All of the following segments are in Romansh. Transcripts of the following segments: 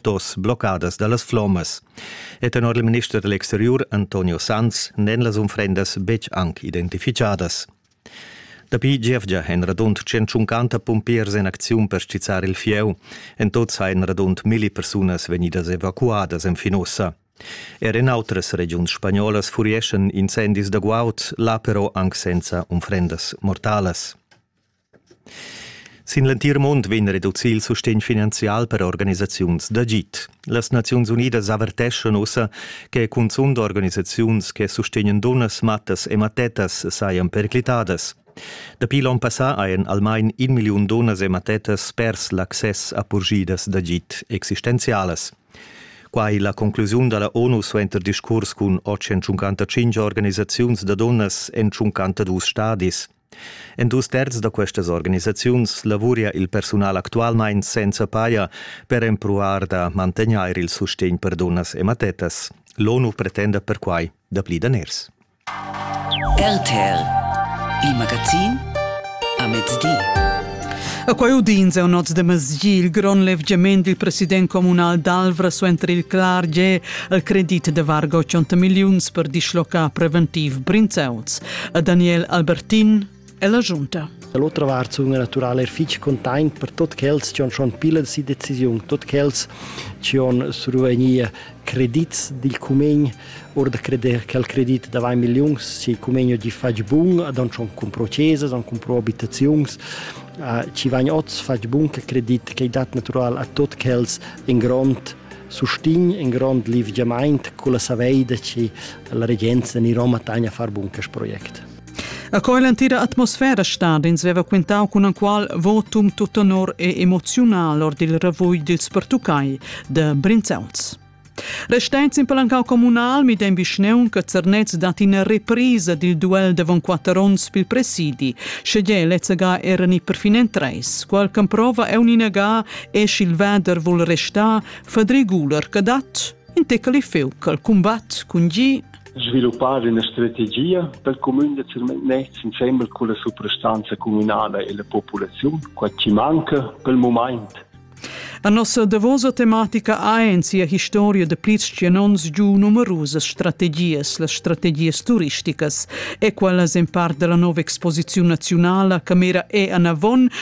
dos bloccadas dallas flommas. E tenor il minister dell'exterior Antonio Sanz n'èn las unfrendas betg anc identificadas. Dapi gievgia èn radund 150 pumpiers en acziun per stizzar il fieu. En tot sain radund milli persunas vegnidas evacuadas enfin ussa. Er en outras regiuns spagnolas furieschan incendis da guaud, là però anc senza unfrendas mortalas. Sin l'entir mund vegn reducì il sustegn finanzial per organisaziuns d'agid. Las Naziuns Unidas averteschan ussa che cunzunt organisaziuns che sustegnan dunnas, mattas e mattettas sajan periclitadas. Dapi l'onn passà hajan almain in milliun dunnas e mattettas pers l'access a purgidas d'agid existenzialas. Quai la conclusiun da la ONU suenter discurs cun 855 organisaziuns da dunnas en 52 stadis. En dus terz da questas organisaziuns lavuria il persunal actualmein senza paia per empruar da mantegnair il sustegn per dunnas e mattettas. L'ONU pretenda perquai dapli daners. RTL, il magazin a mezdi. A quai udins è un oz de masgi il grond levgiament del president comunal d'Alvra suenter il clar ge al credit de vargo 100 miliuns per dislocar preventiv Brinzeuts. a Daniel Albertin e la giunta. Dall'otra vart sun naturale er fich containt per tot quels chi han schon pile si decisiun, tot quels chi han survegnir credits dil cumegn, or da creder che il credit da 20 miliuns, se il cumegno gli fage bun, ad han schon compro cesas, han compro abitaziuns, ci vain oz fach bun che credit che dat natural a tot quels in grond sustign in grond livgiamaint culla saveida chi la regenza in Roma tagna far bun quest project. A co l'antira atmosfera stadins veva quintau cun anqual votum tut honor e emoziunal or dil ravugl dils pertuccai de Brinzauls. Resteins in palancau comunal midem vischneun che Zernez dat ina reprisa dil duel davon quatter onns pil presidi, sche lezza era ni perfinen treis, qual prova è uninaga e sch'il vader vul restar, fa regular che dat in tecali feuc al cumbat cun gi sviluppar ina strategia per cumün da Zirmennetz insembel con la suprastanza communala e la populaziun, quai ci manca pel moment. A nossa davosa tematica ha en sia historia de plis cianons giu numerusas strategias, las strategias turisticas, e quallas en part della nova exposiziun nazionala che mira e anavon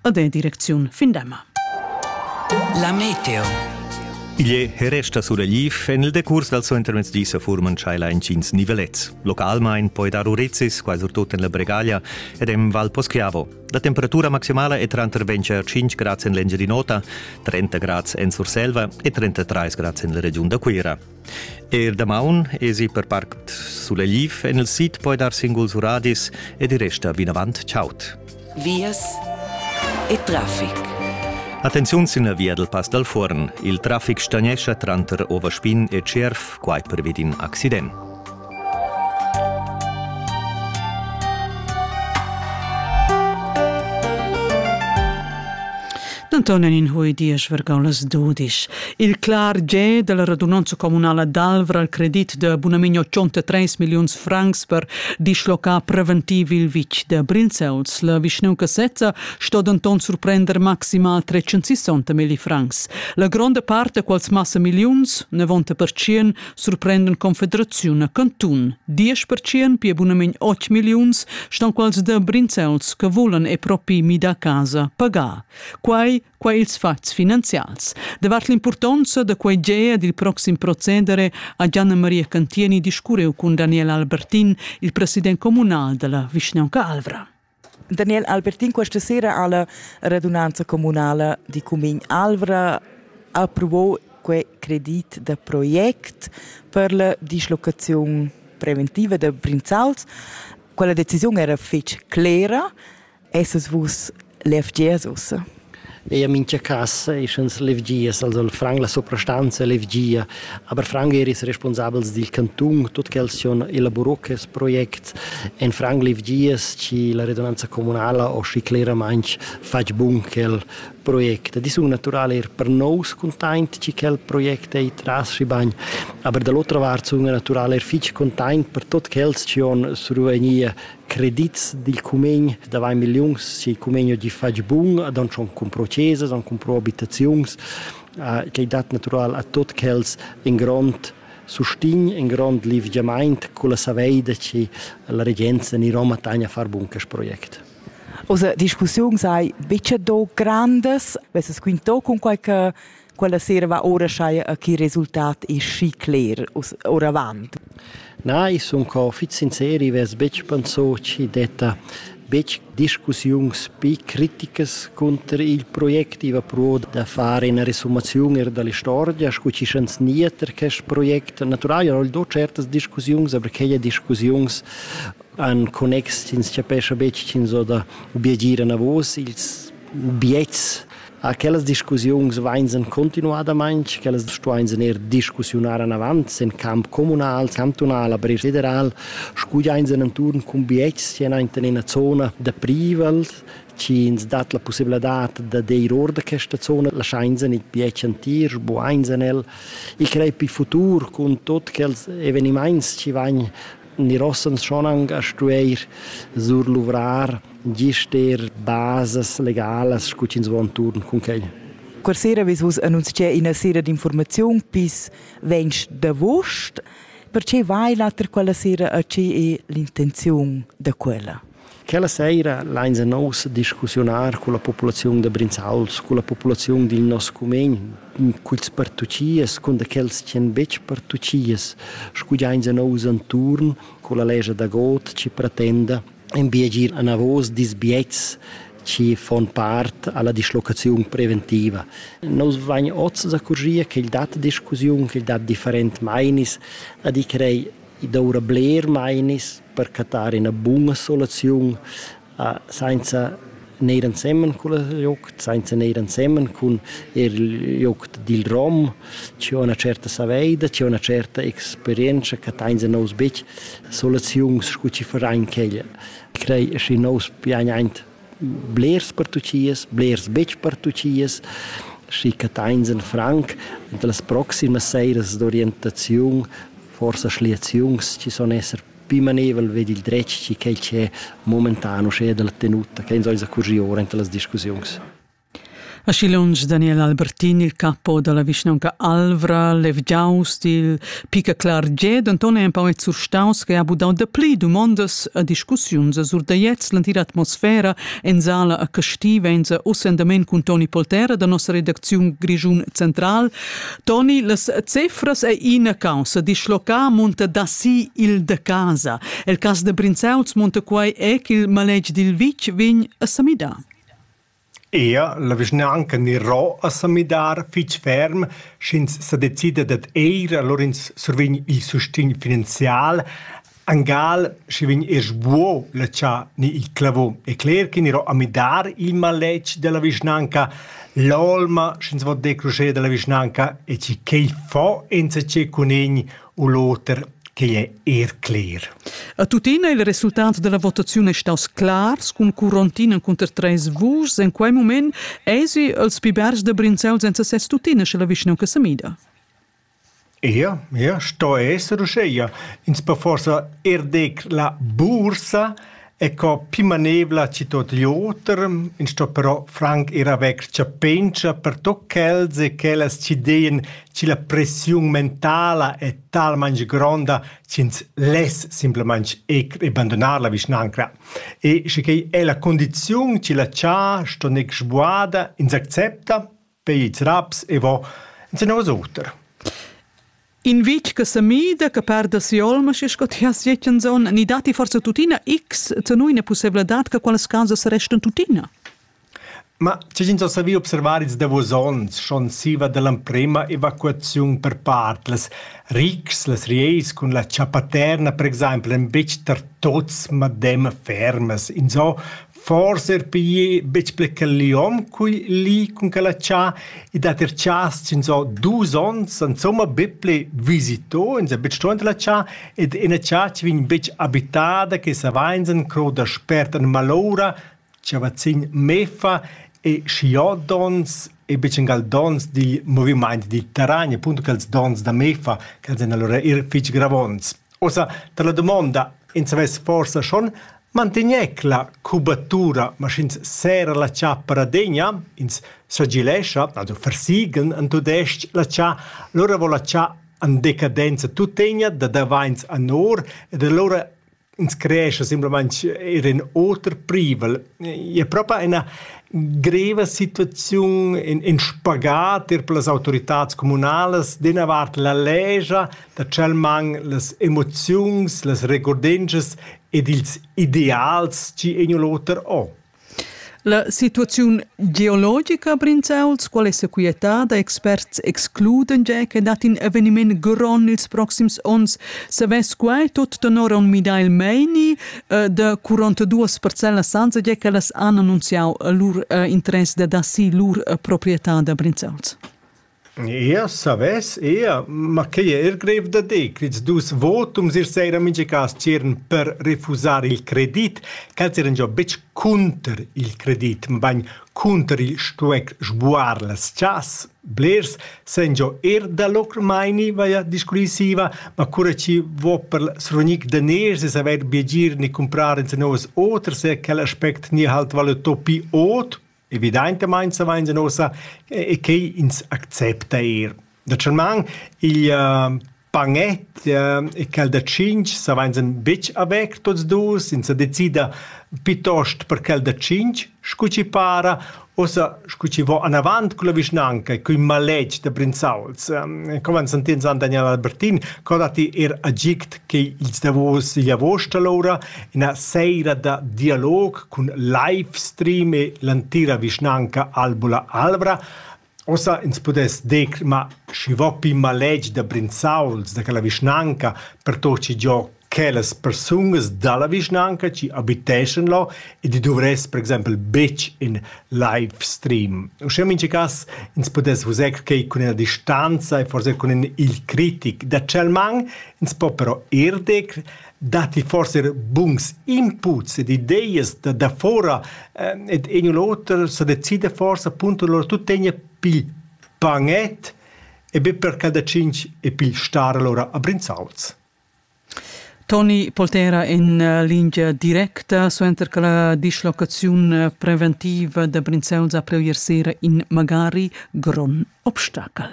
ed è direcziun Findemma. La meteo. Igl è e resta suragliv en il decurs dal suo intermezzo di sa furman tschailer intgins nivelets. Localmain poi dar urezis, quai surtut en la Bregaglia ed en Val Poschiavo. La temperatura maximala è tranter 25 grads en l'Engiadin'Ota, 30 grads en Surselva e 33 grads en la regiun da Cuira. Eir damaun esi per parc Sulegliv en il sid poi dar singuls uradis ed i resta vinavant chaud. Vias e traffic. Attenziun sin la via dal Pass dal Fuorn. Il traffic stagnescha tranter Overspin e Tschierv, quai pervi d'in accident. Anton in hui diesch vergau las dudisch. Il clar ge della radunanza comunala d'Alvra al credit de Bunaminio 103 milliuns francs per dislocar preventiv il vitg de Brinzels. La Vischneu Casetta sto denton surprender maximal 360 milli francs. La gronda parte, quals massa milliuns, 90% surprenden Confederaziun a Cantun. Diesch percient pia bunament 8 milliuns ston quals da brinzels che volan e propi mi da casa pagar. Quai, quai ils fatgs finanzials. Davart l'importanza da quai gea dil proxim procedere a Gianna Maria Cantieni discureu cun Daniel Albertin, il president comunal della vischnaunca Alvra. Daniel Albertin questa sera alla radunanza comunala di Cumin Alvra approvò quei credit da project per la dislocazione preventiva da Brinzals. Quella decisione era fitch clera, essas vus l'FGS ussa? Ei ha mintga casa e sch'ins levgias, also Frank la suprastanza levgia, aber Frank er is responsabels dil cantun, tut quels schon elaborò quest project. En Frank levgias chi la redunanza communala ho schi cleramaing fatg bun quel project. Di sun natural er per nous containt chi quel project ei tras schi bagn, aber da l'otra vart sun wir natural er fich containt per tot quels chi hon survegnia credits dil cumegn da vai milliuns si cumegn di fatg bun ad on schon compro cesas an compro abitaziuns uh, che dat natural a tot quels in grond sustin in grond livgiamaint con la saveida che la regenza ni Roma tagna far bun quest project. Also, die Diskussion sei bitte do grandes, was es quinto con qualche Quella sera va ora schaia a chi resultat è schi cler oravant. Na, ich sun co fit sinceri, ves betg pensò chi detta betg discussiuns pi criticas cunter il project. I va pro da fare una resumazione della storia, scu chi schans nieter quest project. Natural, io ho do certas discussiuns, aber quelle discussiuns an connex ins chapescha betg ch'ins ho da obiegire a vos ils biets A quellas discussiuns vains en continuadamaing, quellas stuains eir discussiunar anavant in camp communal, cantunal, aber eir federal, scugliains en inturn cun bietgs chi anaint in üna zona da privels, chi ins dat la pussibladad da deir or da questa zona, laschains in il bietg antir, sbuains en el. I crei pi futur cun tuot quels evenimaints chi vain Nir ossa ans schon aunc a stueir surluvrar gist eir basas legalas scu ch'ins vo antuorn cun quai. Quella sera ves vus annunzià ina sera d'informaziun bis 20 d'avuost. Perche vai l'oter quella sera e che è l'intenziun da quella? Quella seira lainsa nous discussiunar culla populaziun da Brinzauls, culla populaziun dil nos cumegn, culs partucias, cun da quels ch'en betg partucias, scugiainsa nous anturn culla legia da god chi pretenda in biagir anavos disbiets chi fon part alla dislocaziun preventiva. Nous vain oz accorgia ch'el dat discussiun, ch'el dat different meinis a di crei I doura bler mainis per cattar üna buna soluziun a sainza neir ensemen cul joc, sainza neir ensemen cun eir il joc dil rom. Chi ho üna tscherta saveida, chi ho üna tscherta experientscha, chattains a nous betg soluziuns scu chi farain quella. Crei schi nous piagn aint blers per tuot chias, blers betg per tuot chias, schi chattains in franc anta las proximas seiras d'orientaziun forsa schliaziuns ci son esser più manevel vedi il dretg ci quel che momentan usce dalla tenuta che insomma curri ora in las discussions A Schilungs Daniel Albertin, il capo della vischnaunca Alvra, levgiaus dil Pica Clarget, Anton è un po' surstaus che ha budau da pli domandas a discussiuns a Surdaiez, l'antira atmosfera en sala a Castiva, en sa ossendament cun Toni Poltera da nossa redacziun Grischun Central. Toni, las cifras ei ina caussa, dischlocar munta da si il de casa. El cas de Brinzauls munta quai è ch'il maletg dil vitg vegn a samidar. Ea, la vischnanca Nero a samidar fitg ferm, sch'ins sa decida dad eir, allora ins survegn il sustegn finanzial, Angal schi vegn er sbuo letschà ni il clavon. E cler ch'ign ero a midar il maletg della vischnanca, l'olma sch'ins vo decruscher della vischnanca e chi ch'ei fo enzatgé cun egn u l'oter quei è er cler. A tuttina il resultat della votaziun è staus clars cun Curontin encunter treis vuschs. En quei mument èsi els pi bergs da Brinzels enza ses tuttina sche la vischnaunca semida. Ia, ia sto esser uscheia. Ins po forsa eir dir la bursa e co pimanevla chi tot l'oter. Ins sto però franc eir avair chapentscha per tot chels e chellas chi deien chi la pressiun mentala è talmaing gronda ch'ins less simplamaing eir bandunar la vischnanca. E schi quei è la condiziun chi la cha sto gnir sbuada, ins accepta. Peits raps e vo ensenovas oter. In vitg che semida, che perda si'olma, sche sco ti has detto in zon, ni dati forse tuttina x zenuina possibilitad che quelles causas restan tuttina? Ma c'è gente so savi observar ils davos onns schon siva dell'emprema evacuaziun per part las rics, las rieis cun la chapaterna per exempel en betg tar tots madem fermas, in so Forsa er pigl betg pli quel liom cui li cun quel ha tschà ed ha ter tschas chinzò dus ons insomma be pli visito, ins ha betg truond la tschà ed ina tschà chi vegn betg abitada che savains en cro daspert en malora, chavazzin mefa e schiodons e betg angal dons digl movimaint digl terragn, appunto quels dons da mefa ch'els èn alura eir fich gravonts. Uossa tar la dumonda, ins savess forsa schon Mantegnecla cubatura, ma sch'ins serra la chappa radegna, ins sagilescha ad uffar sigl en tudestg la cha, lura vo la cha en decadenza tuttegna da davains anor ed alura ins creescha simplamaing eir ün oter privel. I es propa üna greva situaziun, ün ün spagat eir per las autoritats cumünalas, d'üna vart la legia, da tschel man las emoziuns, las regordenschas ed ils ideals chi egn l'oter ò? La situaziun geologica a Brinzauls, qual es sequietada, experts excluden già che dat in evenimaint grond ils proxims ons. Savess quai tot tenor aun midar il meini eh, da 42 parcellas sanza già ch'ellas han annunziau lur eh, interess dad assir lur eh, proprietà da Brinzauls? Eir savess eir, ma quai è eir greiv da dir quist dus votums ir seira mincha cas tschiern per refusar il credit, ch'els eran giò betg cunter il credit, mabain cunter il stuair sbuar las chas. Blers sajan giò eir da lur maini vaja discurrissiva, ma cura chi vo per il srugnic daners e savair biagir ne cumprar ins novas oters, è quel aspect gnir halt valuto pi ot. Evidaintamaing savains uossa e che ins accepta eir. Natüralmaing il bagnet e quel da tschinch savains betg avert tuots duos, ins sa decida pitost per quel da tschinch, scu chi para, uossa scu chi vo anavant culla vischnanca e cun maletg da Brinzauls. Come han sentì ins han Daniel Albertin, co datti eir agid che ils davos i avuost alura Ina seira da dialog cun livestream e l'entira vischnanca Albula Albra. Ossa ins pudess dir ma schi vo pi maletg da Brinzauls da quella vischnanca pertot chi giò quellas persungas dalla vischnanca chi abiteschan là ed i duvress per exempel betg in livestream. Uschè in mincha cas ins pudess vus ecco quai cun ina distanza e forse cun in il critic da tschel man, ins po però ir dir datti forse buns inputs ed ideas da, da fora eh, ed in u l'oter sa decide forse appunto loro tutto tegna pil panet e be per cada cinc e pil star allora a Brinzauls. Toni Poltera in eh, linea directa suenter che la dislocazione preventiva da Brinzauls a preu ieri sera in magari Gron. Obstacel.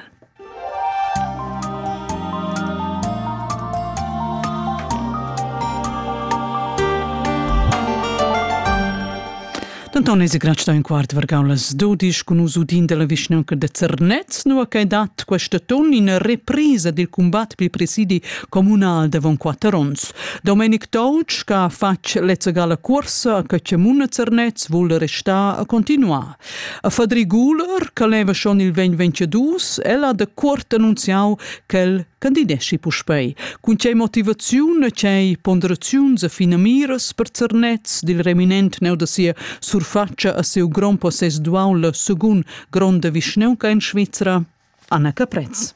Denton eis grat stau in quart vargau las dudisch cun nus udin dalla vischnaunca de Zernez, nua che dat quest ton ina reprisa dil combat pil presidi communal davon quatter onns. Domenic Touch, che ha fatg lezza gala cuorsa a Căcemuna Zernez, vul restar a continuar. A Fadri Guler, che leva schon il 2022, el ha da cuort annunziau ch'el candideshi puspei. Cun tgei motivaziun e tgei ponderaziuns e finamiras per Zernez dil reminent neu da sia surfatscha a siu grond possess dual la secund gronda vischneunca en Svizra? Anna Caprez.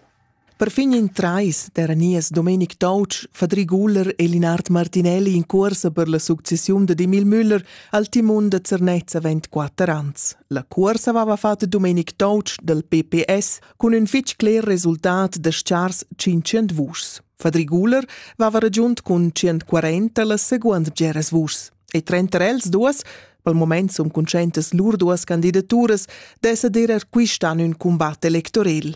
Perfin in trais d'eran nies Domenic Toutsch, Fadri Guler e Linard Martinelli in cuorsa per la successiun dad Emil Müller al timun da Zernez avent quatter ans. La cuorsa aveva fatg Domenic Toutsch dal PPS cun ün fitg cler resultat da schars 500 vuschs. Fadri Guler vava ragiunt cun 140 la seguond geras vuschs e trenter els duas pel moment sun conscientas lur duas candidaturas d'esser der er quist an ün cumbat electorel.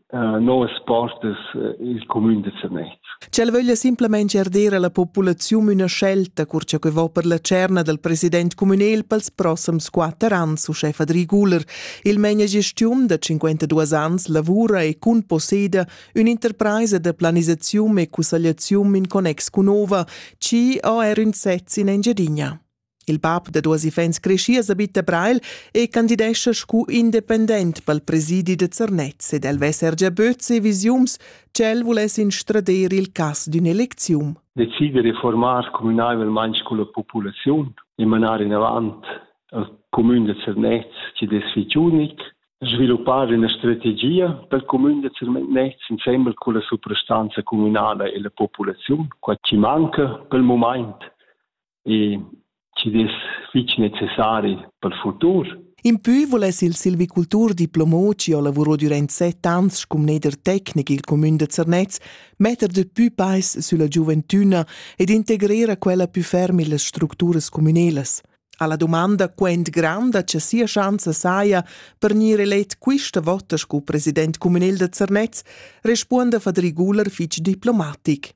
novas postas il cumün da Zernez. Ch'el vöglia simplamaing er dir alla populaziun üna scelta cur cha que vo per la tscherna dal president cumünel pels prossams quatter ans, uschè Fadri Guler. Il manageschiun da 52 ans lavura e cun posseda ün'interpraisa da planisaziun e cussagliaziun in connex cun Nova, chi ho er ün sez in Engiadina. Il bab da duas iffaunts creschias abita Breil e candidescha scu independent pel presidi da Zernez ed el vesser già böts e visiums ch'el vuless instrader il cas d'ün eleczium. Decider e formar communaivelmaing culla populaziun e manar inavant al cumün da Zernez chi'd es fich unic, sviluppar üna strategia pel cumün da Zernez insembel culla suprastanza cumünala e la populaziun, quai chi manca pel mumaint e chi'd es fich necessari pel futur. Impü vuless il silvicultur diplomo chi ho lavurò dürant set ans scu mneder tecnic i'l cumün da Zernez metter de pü peis sülla giuventüna ed integrer a quella pü ferm illas structuras cumünelas. Alla domanda quant granda cha sia schanza saja per gnir elet quista vota scu president cumünel da Zernez, respuonda Fadri Guler fich diplomatic.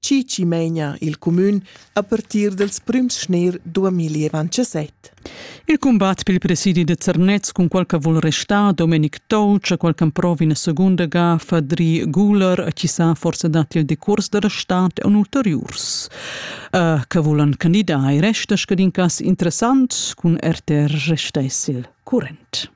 Cici meina il cumün a partir dels prüms schnir 2017. Il combat pel presidi de Zernez cun qualche vuol restar Domenic Touch, qualche prova in seconda gaffa Dri Guler, chi sa forse dati il decurs de restat un ulteriurs. Uh, che volan candidar e resta scadin cas interessant cun RTR restessil current.